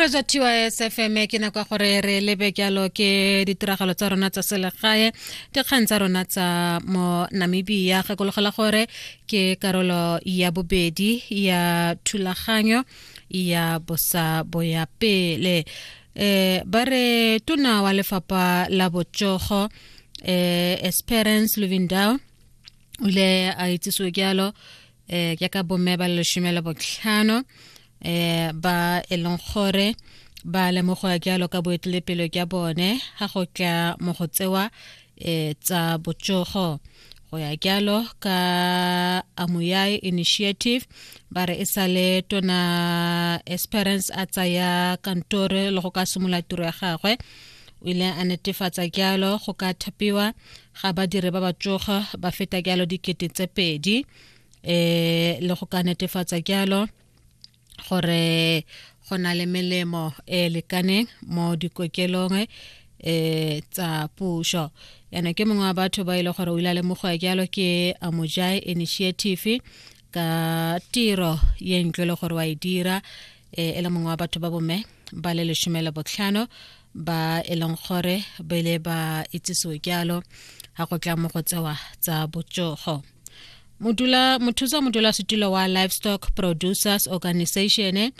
re ja tys fm ke nako ya gore re lebe jalo ke ditiragalo tsa rona tsa selegae dikgang tsa rona tsa mo namibia gakologela gore ke karolo ya bobedi ya thulaganyo ya bosa boya pele eh ba re tona wa lefapa la botsogo eh esperance luvindal o ile a itsisiwe jalo eh ke ka bomme ba leshome le botlhano eh ba e leng gore ba lemogoa jalo ka boetelepelo jwa bone ga go tla mo go tsewa eh tsa botsogo go ya jalo ka amuyai initiative ba re e sale tona esperance a tsaya kantore le go ka simolola tiro ya gagwe o ile a netefatsa jalo go ka thapiwa ga badiri ba ba tsoga ba feta jalo dikete tse pedi um le go ka netefatsa jalo gore go na le melemo e lekaneng mo dikokelong um tsa puso yana ke mongwe wa batho ba e le gore o ile a lemogoa jalo ke amojai initiative ka tiro ye ntle le gore wa e dira e e le mongwe wa batho ba bomme ba le lesome le botlhano ba e leng gore ba ile ba itsisiwe jalo ga go tla mo go tsewa tsa botsogo modula mothusa modula setulo wa livestock producers organization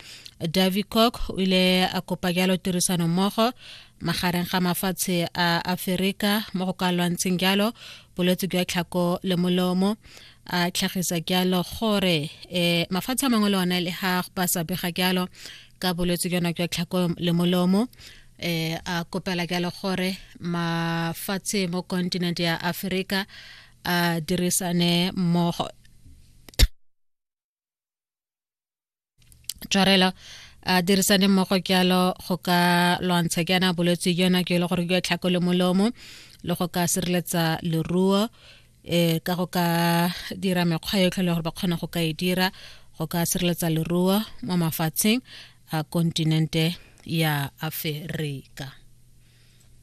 davicock o ile a kopa jalo tirisano mmogo magareng ga mafatshe a aferika mo go ka lwantsheng jalo bolwetse jwa tlhako le molomo a tlhagisa kealo gore um mafatshe a mangwe le one le ga ba sa bega kealo ka bolwetse jona jwa tlhako le molomo um a kopela kealo gore mafatshe mo continent ya aforika a dirisane mmogo tšwarelo a dirisane mmogo jalo go ka lwantsha jaana bolwetse jona jo e le gore jwa tlhako le molomo le go ka sireletsa leruo um ka go ka dira mekgwa yotlhe le gore ba kgona go ka e dira go ka sireletsa leruo mo mafatsheng a kontinente ya aferika